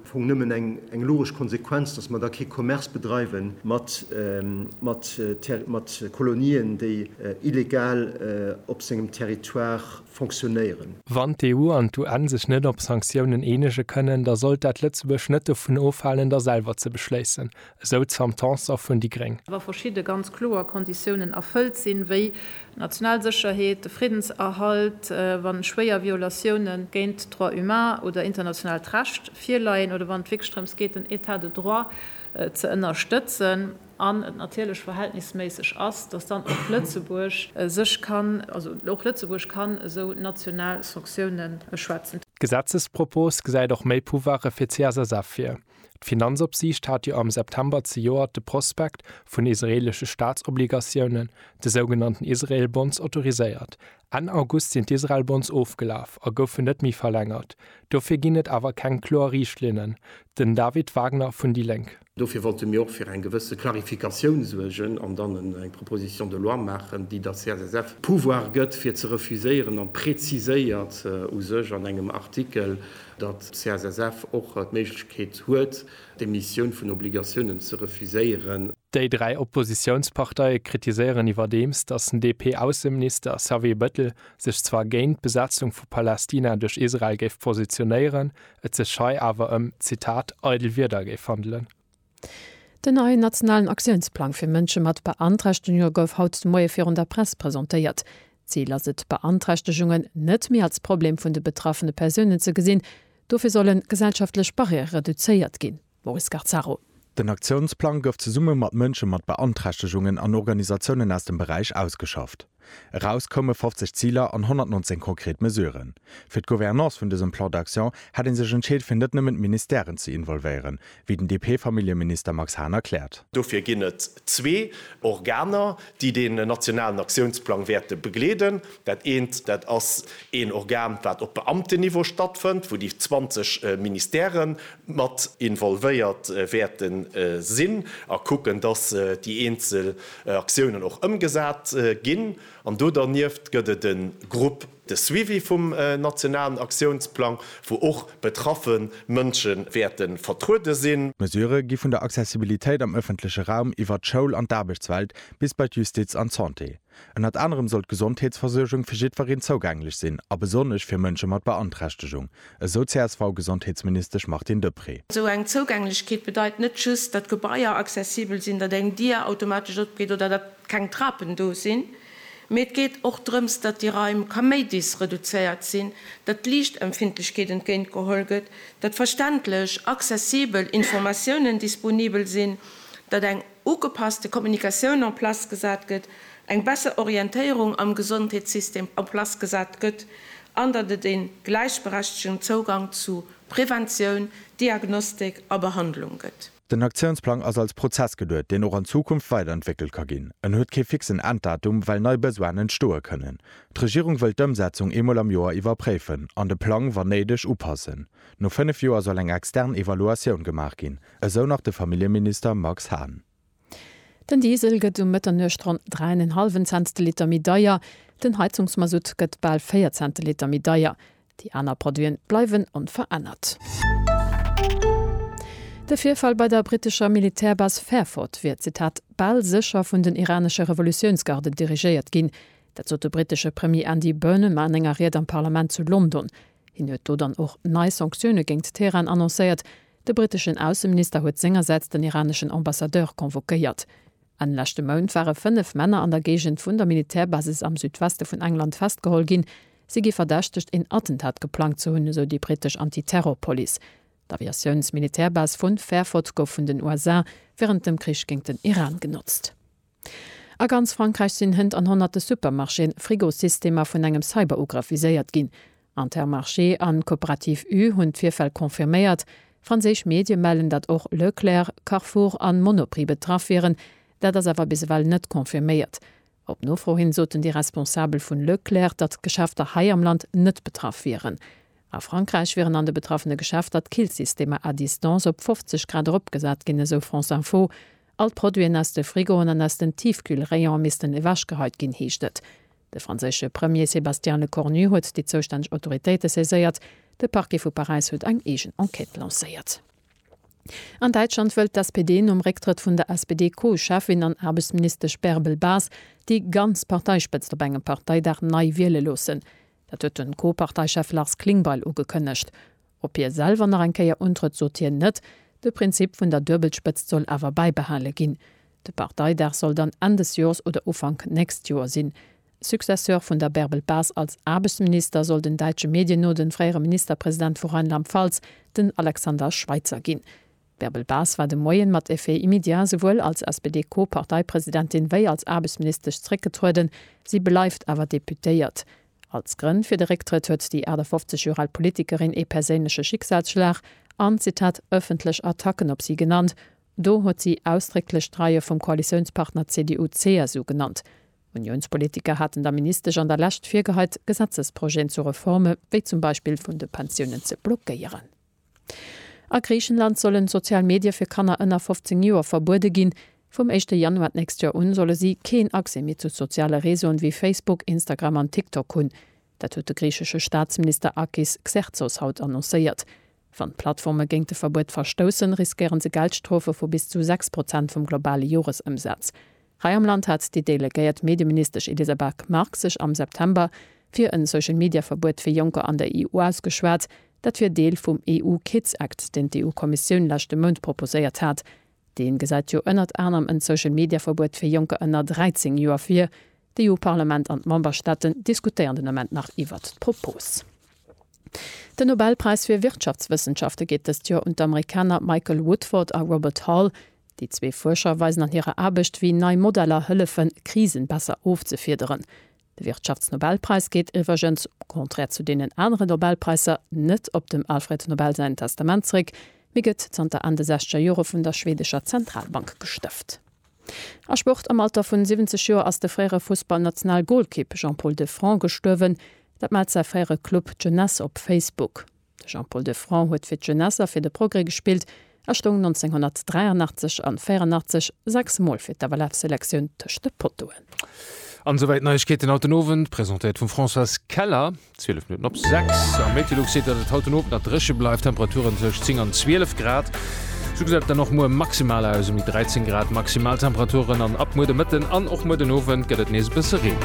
Fong nëmmen eng logesch Konsequenz, dass mer da kee Commerce bedreiwe mat Kolonien, déi illegal op sengem Territoire fonctionnéieren. Wann d'EU an d'UN sech net op Sanktiounen eenege kënnen, da sollt dat Lëtzebuerg net dovun ofhalen, der selwer ze beschléissen, esou d'Sam Tanson vun déi gréng. wa verschidde ganz kloer Konditiounen erfëllt sinn, wéi d'national Sécherheet, de Friddenserhalt, wa schwéier Violatioune géint d'Droits humains oder internationaalt Recht virleien oder wann et wierklech drëms geet, den État de droit ze ënnerstëtzen, an et natierlech verhältnisméisseg ass, dass dann och Lëtzebuerg sech kann, also och Lëtzebuerg kann esou national Sanktiounen beschwätzen. D'Gesetzespropos gesäit och méi Pouvoire fir d'CSSF vir. D'Finanzopsiicht hat jo am September zejoert de Prospekt vun israeelesche Staatsobligatiounen, de sougenannten Israel Bonds, autoriséiert. Enn August sinn d'Israel Bonds ofgelaf a goufen net méi verlängert. Dofir ginn et awer keng kloer Riichtlinnen. Den David Wagner vun déi Lénk. Dofir wollte mir och fir eng gewësse Klarifikatioun suergen an dann eng Proposition de loi maachen, déi der CSSF d'Pouvoir gëtt, fir ze refuséieren, a präziséiert u sech an engem Artikel, datt d'CSSF och d'Méiglechkeet huet, d'Emissioun vun Obligatiounen ze refuséieren. Déi dräi Oppositiounsparteie kritiséieren iwwerdeems, datt den DP-Ausseminister Xavier Bettel sech zwar géint d'Besetzung vu Palästina duerch Israel géif positionéieren, et sech hei awer ëm, Zitat, eidel Wierder géif handelen. Den neien nationalen Aktiounsplang fir Mënsche mat Beanträchtegunge gouf haut de Moie virun der Press presentéiert. D'Zil ass et, Beanträchtegungen net méi als Problem vun de betraffene Persounen ze gesinn. Dofir sollen gesellschaftlech Barrièrë reduzéiert ginn. Maurice Garzaro. Den Aktiounsplang gouf zesumme mat Mënsche mat Beanträchtegungen an Organisatiounen aus dem Beräich ausgeschafft. Eraus koume 50 Ziler an 119 konkret Mesuren. Fir d'Gouvernance vun dësem Plan d'action hätt ee sech entscheet fir net nëmmen d'Ministèren ze involvéieren, wéi den DP-Familljeminister Max Hahn erkläert. Dofir ginn et zwee Organer, déi den nationalen Aktiounsplang wäerte begleeden. Dat eent, dat ass een Organ, wat op Beamtenniveau stattfënnt, wou déi 20 Ministèrë mat involvéiert wäerte sinn a kucken, datt déi eenzel Aktiounen och ëmgesat ginn. An do dernieft gëtt et e Grupp de suivi vum nationalen Aktiounsplang, wou och betraffe Mënsche wäerte vertruede sinn. D'Mesurë gi vun der Accessibilitéit am ëffentleche Raum iwwert d'Schoul an d'Aarbechtswelt bis bei d'Justiz an d'Santé. Ënnert anerem soll d'Gesondheetsversuergung fir jiddwereen zougänglech sinn a besonnesch fir Mënsche mat Beanträchtegung, esou d'CSV-Gesondheetsministesch Martine Deprez. Esou eng Zougänglechkeet bedeit net just, datt Gebaier accessibel sinn, datt eng Dier automatesch opgeet oder datt keng Trapen do sinn, mee et geet och drëms, datt déi Raim kaméidis reduzéiert sinn, datt d'Liichtempfindlechkeet entgéint geholl gëtt, datt verständlech, accessibel Informatiounen disponibel sinn, datt eng ugepasste Kommunikatioun en place gesat gëtt, eng besser Orientéierung am Gesondheetssystem en place gesat gëtt an datt et ee gläichberechtegen Zougang zu Preventioun, Diagnostik a Behandlung gëtt. Den Aktiounsplang ass als Prozess geduet, deen och an Zukunft weiderentwéckelt ka ginn. En huet kee fixen Enddatum, well nei Besoinen entstoe kënnen. D'Regierung wëll d'Ëmsetzung eemol am Joer iwwerpréifen an de Plang, wann néideg, upassen. No fënnef Joer soll eng extern Evaluatioun gemaach ginn, esou nach de Familljeminister Max Hahn. Den Diesel gëtt um Mëtternuecht ronn 3 en en hallwen Cents de Liter méi deier, den Heizungsmasutt gëtt bal 4 Cent de Liter méi deier. Déi aner Produite bleiwen onverännert. De Virfall bei der brittescher Militärbas Fairford wier, Zitat, bal sécher vun den iranesche Revolutiounsgarden dirigéiert ginn. Dat sot de brittesche Premier Andy Burnham an enger Ried am Parlament zu London. Hien huet do dann och nei Sanktioune géingt Teheran annoncéiert. De britteschen Ausseminister huet sengersäits den iraneschen Ambassadeur convoquéiert. Enn leschte Mount ware fënnef Männer an der Géigend vun der Militärbasis am Südweste vun England festgeholl ginn. Si gi verdächtegt, een Attentat geplangt ze hunn, esou déi brittesch Anti-Terror-Police. D'Aviatiouns-Militärbase vu Fairford gouf vun den USA wärend dem Krich géint den Iran genotzt. A ganz Frankräich sinn Hënt an honnerte Supermarchéen, Frigosystemer vun engem Cyberugrëff viséiert ginn. Intermarché an d'Cooperative U hunn d'Virfäll confirméiert. Franséisch Medie mellen, datt och Leclerc, Carrefour an Monoprix betraff wieren. Dat ass awer bis ewell net confirméiert. Op Nofro hin soten déi Responsabel vun Leclerc, datt d'Geschäfter hei am Land net betraff wieren. A Frankräich wieren an de betraffene Geschäfter d'Killsystemer à distance op 50 Grad eropgesat ginn, esou France Info. All d'Produiten aus de Frigoen an aus den Tiefkühlrayone missten ewechgeheit ginn, heescht et. De franséische Premier Sébastien Lecornu huet déi zoustänneg Autoritéite saiséiert. De Parquet vu Paräis huet eng eegen Enquête lancéiert. An Däitschland wëllt d'SPD nom Récktrëtt vun der SPD-Co-Cheffin an Aarbechtsministesch Bärbel Bas déi ganz Parteispëtzt op engem Parteidag nei wiele loossen. Dat huet de Co-Parteichef Lars Klingbeil ugekënnegt. Op hie selwer nach eng Kéier untrëtt, sot hien net. De Prinzip vun der Duebelspëtzt soll awer bäibehale ginn. De Parteidag soll dann Enn des Joers oder Ufank nächst Joer sinn. Successeur vun der Bärbel Bas als Aarbechtsminister soll den däitsche Medien no de fréiere Ministerpresident vu Rheinland-Pfalz, den Alexander Schweitzer ginn. D'Bärbel Bas war de Moien mat effet immédiat esouwuel als SPD-Co-Parteipresidentin wéi als Aarbechtsministesch zréckgetrueden, si bleift awer Deputéiert. Als Grënn fir de Récktrëtt huet déi 58 Joer al Politikerin ee perséinleche Schicksalsschlag an, Zitat, ëffentlech Attacken op si genannt. Do huet si ausdrécklech d'Reie vum Koalitiounspartner CDU-CSU genannt. Uniounspolitiker haten der Ministesch an der Lescht virgeheit, Gesetzesprojeten zu Reforme wéi zum Beispill vun de Pensiounen ze blockéieren. A Griichenland sollen sozial Medie fir Kanner ënner 15 Joer verbuede ginn. Vum éischte Januar d'nächst Joer un solle si keen Accès méi zu soziale Réseauen wéi Facebook, Instagram an TikTok hunn. Dat huet de griichesche Staatsminister Akis Xerxos haut annoncéiert. Wann d'Plattforme géint de Verbuet verstoussen, riskéiere se Geldstrofe vu bis zu 6 Prozent vum globale Joresëmsaz. Hei am Land hat déi delegéiert Medieministesch Elisa Bak-Marx sech am September fir en Social-Media-Verbuet fir Jonker an der EU ausgeschwat. Dat wier Deel vum EU-Kids-Act, deen d'EU-Kommissioun leschte Mount proposéiert hat. Dee gesäit jo ënnert anerem en Social-Media-Verbuet fir Jonker ënner 13 Joer vir. D'EU-Parlament an d'Memberstaaten diskutéieren den Ament nach iwwert d'Propos. Den Nobelpräis fir Wirtschaftswëssenschafte geet dëst Joer un d'Amerikaner Michael Woodford a Robert Hall. Déi zwee Fuerscher weisen an hirer Aarbecht, wéi nei Modeller hëllefen, Krisen besser ofzefiederen. De Wirtschaftsnobelpräis geet iwwergens, au contraire zu deenen anere Nobelpräisser, net op dem Alfred Nobel säin Testament zeréck, mee gëtt zanter Enn de sechzeger Jore vun der schweedescher Zentralbank gestëft. A Sport, Am Alter vun 70 Joer ass de fréiere Fussballnationalgolkipp Jean-Paul Defranc gestuerwen. Dat mellt säi fréiere Club d'Jeunesse op Facebook. De Jean-Paul Defrant huet fir d'Jeunesse a fir de Progrès gespillt a stoung 1983 an 84 sechs Mol fir d'AWF-Selektioun tëscht de Pottoen. An souwäit Neiegkeeten haut den Owend, presentéiert vum Françoise Keller. 12 Minutten op 6 am Meteolux seet, datt et haut den Owend nach dréche bleift, Temperaturen tëscht 10 an 12 Grad. Sou gesäit et dann och muer maximal aus, ëm déi 13 Grad Maximaltemperaturen an ab muer de Mëtten an och muer den Owend gëtt et nees e bësse Reen.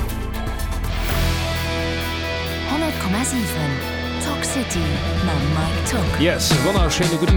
100,7 Talk City mam Mike Tock. Yes, wonnerschéine gudden.